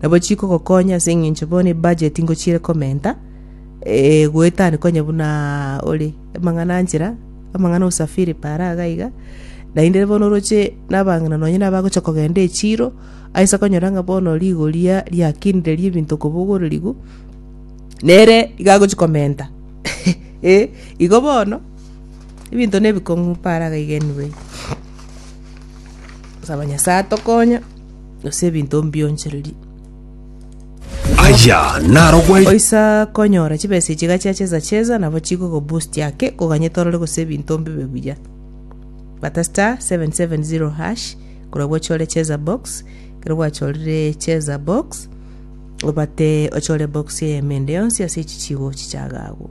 Nabo chikogokonya ase engencho bono ebudget ngochire komenta eh, goetani konya buna ore amang'ana anchera, amang'ana usafiri para iga iga. Naende bono oroche nabang'ina nonye nabagocha kogenda echiro, aise konyora ng'a bono rigoria riakinire riebinto kobogorerigwa, nere iga agochi komenta eh, igo bono ebinto nebikong'u para iga iga anyway. Saba Nyasaye atokonye. gose ebinto mbionchererie. Aya narogwe Oisa konyora chibesa echi iga chiacheza cheza nabo chigogo boost ake koganyete orore gose ebinto mbibe buya. Bata star 770 hash korwa gochore cheza box ekero gwachorire cheza box obate ochore box eyemo ende yonsi ase echi chigochi chiaga agwo.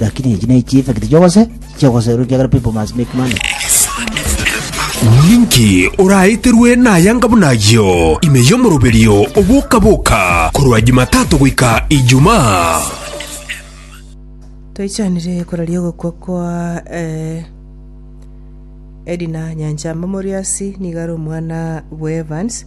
Lakini echi ne chi'effect chi'ogose chi'ogoserwa ekiagera people must make money. Ninki oraeterwe nayanga buna ayio ime y'omoroberio oboka-boka korwa Jumatatu goika Ijumaa? Toichanire koraria ogokwa kwa eh, Edna Nyanchamba Moriasi nigo are omwana bw'Evans